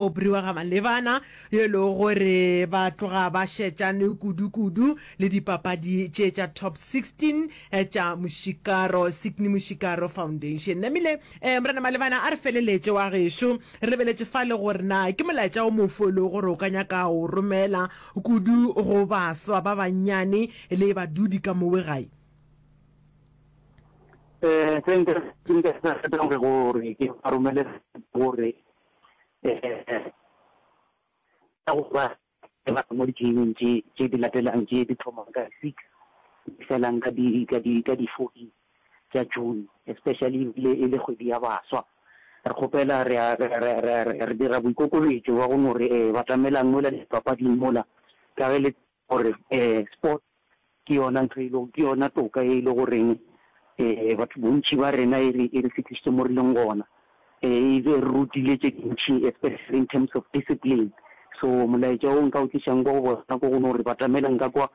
Obri wa ga Malebana, yo e lego gore ba tloga ba šetšane kudu-kudu le dipapadi tše tša Top 16 tša Mošikaro, Sydney Mošikaro Foundation. Namile, eh, Morena Malebana, a re feleletše wa gešo. Re lebeletše fa le gore na ke molaetša o mofe o e lego gore o ka nyaka go o romela kudu go baswa ba bannyane le badudi ka mowe gae? Eh, se nka, se nka se ratang gore ke ba romele gore ka go ba ke ba mo ditlileng tše tše di latelang tše di thoma ka six di felang ka di ka di ka di fourteen tša june especially le e le kgwedi ya baswa re kgopela re re dira boikokobetšo wa go no re eh, batamelang mola dipapading mola ka ge le Gore sports ke yona ntho e lego, ke yona toka e le goreng batho bontši ba rena e re e re fihlišitše mo re leng gona. E re rutile tše dintši especially in terms of discipline. So molaetša o nka o tlišang kwa go bona ko go no re batamela nka kwa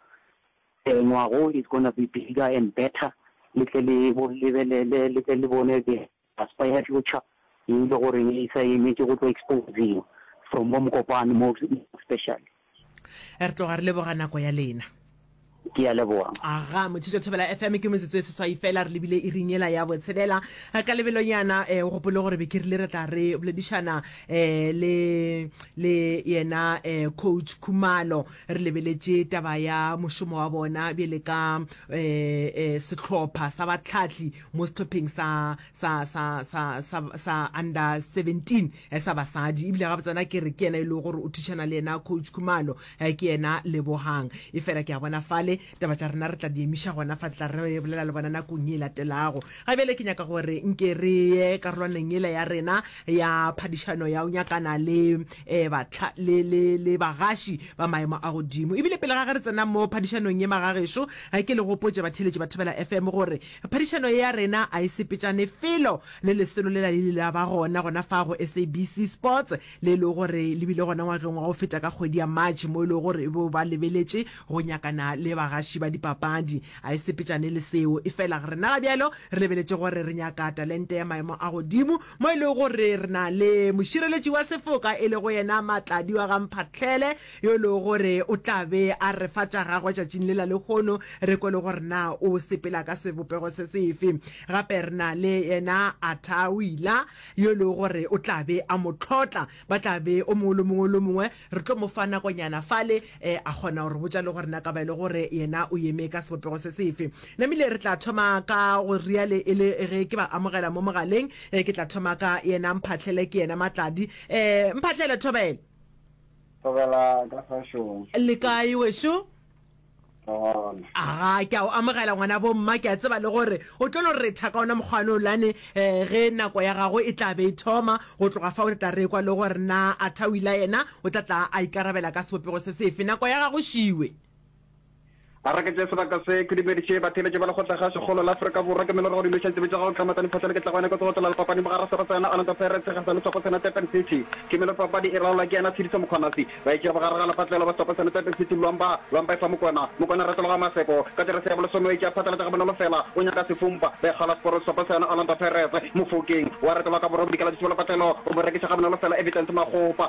ngwago is gonna be bigger and better le tle le lebelele le tle le bone. Maspa ya Tlocha e le gore e sa emetše go tlo exposiwa from bo Mokopane mo especially. Re tloga re leboga nako ya lena. Ke a leboga. Aga, Motšhitšo Thobela FM, ke metsotso e seswai fela re lebile iring yela ya botshelela. Ka lebelonyana um o gopole gore be ke rile re tla re boledišana um le le yena um Coach Khumalo re lebeletše taba ya mošomo wa bona bjele ka um um sehlopha sa batlhahli mo sehlopheng sa sa sa sa sa sa under 17 eh, sa basadi ebile ga botsana ke re ke yena e le gore o thušana le yena coach khumalo eh, ke yena lebogang e fela ke a bona fale taba tša rena re tla di emiša gona fa tla re bolela le bona nakong e latelago ga bjale ke nyaka gore nke re ye karolwaneng ele ya rena ya phadišano ya o nyakana le um batla le le le bagaši ba maemo a godimo ebile pele ga ge re tsena mo phadišanong ye magageso eh, ke le gopotše batheletši ba thobela fm gore Phadišano ye ya rena a e sepetšane felo le lesolo lela le ile la ba gona gona fa go SABC Sports le e lego gore le bile gona ngwageng wa go feta ka kgwedi ya March mo e lego gore e bo ba lebeletše go nyakana le bagaši ba dipapadi. A e sepetšane le seo, efela rena ga bjalo re lebeletše gore re nyaka talente ya maemo a godimo mo e lego gore re na le mošireletši wa sefoka e lego yena Matladi wa ga Mphahlele, yo e lego gore o tla be a re fa tša gagwe tšatšing lela lehono re kwe le gore na o sepela ka sebopego se sefe. Gape re na le yena Atawila, yo e lego gore o tla be a mo tlhotla. Ba tla be o mongwe le mongwe le o mongwe re tlo mo fa nakonyana fale a kgona go re botša le gore na ka ba e le gore yena o eme ka sebopego se sefe. Namile re tla thoma ka go reale e le ge ke ba amogela mo mogaleng, ke tla thoma ka yena Mphahlele, ke yena Matladi. Mphahlele, thobela. Thobela ka kgašong. Le kae wešo? Re gona. Aga, ke a o amogela ngwana bomma, ke a tseba le gore o tlo no retha ka ona mokgwa one olane eh, ge nako ya gago e tla be e thoma. Go tloga fa o tla tla re kwa le gore na Atawila yena o tla tla a ikarabela ka sebopego se sefe. Nako ya gago šiwe. A re ke tše sebaka se, ke dumediše batheeletši ba lekgotla gašo kgolo la Afrika Borwa, ke mele re go dumiša ditsebi tša gago Tlhamata Diphohlele ke tlagwane kotsi go tlola lepapading bogare ga Serotsena, Orlando Pirates, Sekgahla le Tswakotsena, Durban City. Ke mele papadi e laolwa ke yena Tshediso Mokgonasi. Ba itšego bogare ga lepatlelo ba Tswakotsena, Durban City, Luang Ba, Luang Ba e fa Mokwena, Mokwena a retologa Maseko. Ka jeresi ya bolesome o itše a phatlalatša gabonolo fela, o nyaka sefumpa. Ba ikgala Sporong Tswakotsena, Orlando Pirates, Mofokeng. O a retologa ka borobedi ka la Tšusubelo Patlelo, o mo rekiša gabonolo fela Evidence Makgopa.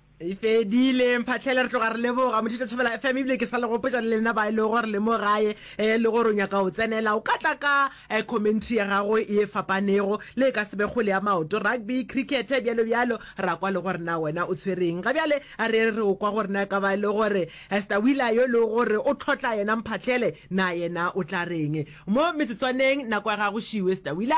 E fedile mphatlhele re tloga re leboga mothito thobela fm ebile ke sa le gopotsa le lena ba e le gore le mo gae um le gore o nyaka o tsenela o ka tla ka um commentary ya gago e fapanego le e ka sebe kgole ya maoto rugby cricket bjalo bjalo ra kwa le gore na wena o tshwereng ga bjale a re re o kwa gore na e ka ba e le gore esta wila yo le gore o tlhotla yena mphatlhele na yena o tla reng mo metsetswaneng nako ya gago šiwe esta wila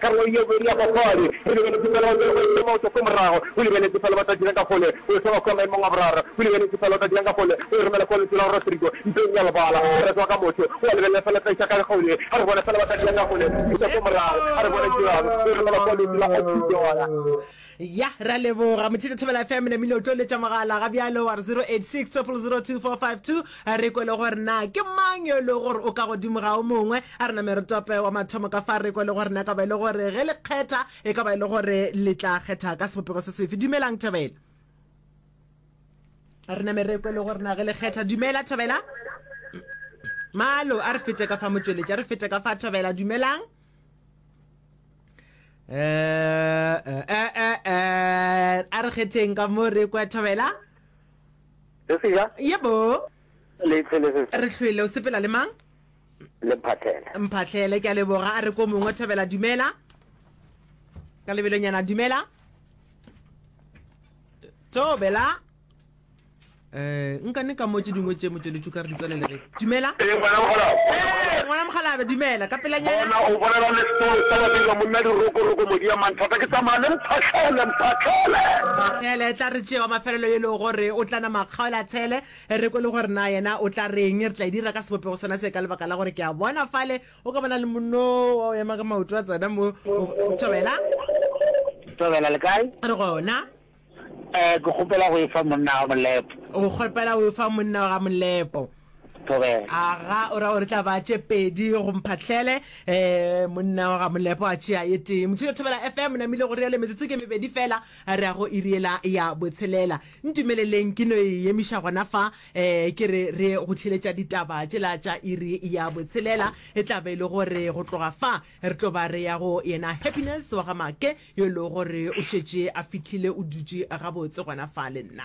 Karolong ye bobedi ya papadi re lebeletse fela go tšwela go ema maoto ko morago, go lebeletse fela ba tla dirang ka gole go e soba kwa maemong a boraro, go lebeletse fela o tla dirang ka gole go e romela kwa lentšu la Rodrigo mpeng ya lebala, a re tswa ka motho o a lebelela fela tla iša ka gole, a re bona fela ba tla dirang ka gole go feta ko morago, a re bona dirang go e romela kwa lentšu la Oxy Joana. Ya, re a leboga. Mothito Thobela FM, namile o tlo letša mogala ga bjalo wa re 0860002452 re kwele gore na ke mang yo e le gore o ka godimo ga o mongwe. A re name re tope wa mathomo ka fa re kwele gore na ka ba e le gore ge le kgetha e ka ba e le gore le tla kgetha ka sebopego se sefe. Dumelang Thobela. A re name re kwele gore na ge le kgetha. Dumela Thobela. Malo, a re fete ka fa motšweletši, a re fete ka fa Thobela. Dumelang. a re kgetheng ka mo re kwa thobela sesija yebo re hlwele o sepela le mang le mphatlhele mphatlhele ke a leboga a re ko mongwe thobela dumela ka lebelonyana dumela thobela Eh, nka ne ka mo tše dingwe tše motšweletšu ka re di tswalelege dumela ee ngwana mogalabe ee ngwana mogalabe dumela ka pelanyana o bolela le setolo sa badira monna dirokoroko modi ya manthata ke tsamaya le mphatlhele mphatlhele mphatlhele tla re tšewa mafelelo e lego gore o tlana makgaola tshele re kwe le gore na yena o tla reng re tla e dira ka sebopego sona se ka lebaka la gore ke a bona fale o ka bona le monno wa o ema ka maoto a tsena mo thobela thobela le kae re gona Eh, ke kgopela go e fa monna ga Molepo. O kgopela go e fa monna ga Molepo. Thobela. Aga, o ra gore tla ba tše pedi go mphatlhele. Eh, monna ga Molepo a tšea ye tee. Motšhilo Thobela FM, namile go reale metsotso ke mebedi fela, re ya go iriela ya botshelela. Ntumeleleng ke no e emiša gona fa, eh, ke re re go theletša ditaba tšela tša iri ya botshelela. E tla be e le gore go tloga fa, re tlo ba re ya go yena Happiness wa ga Make. yo e lego gore o šetše a fihlile o dutše gabotse gona fa le nna.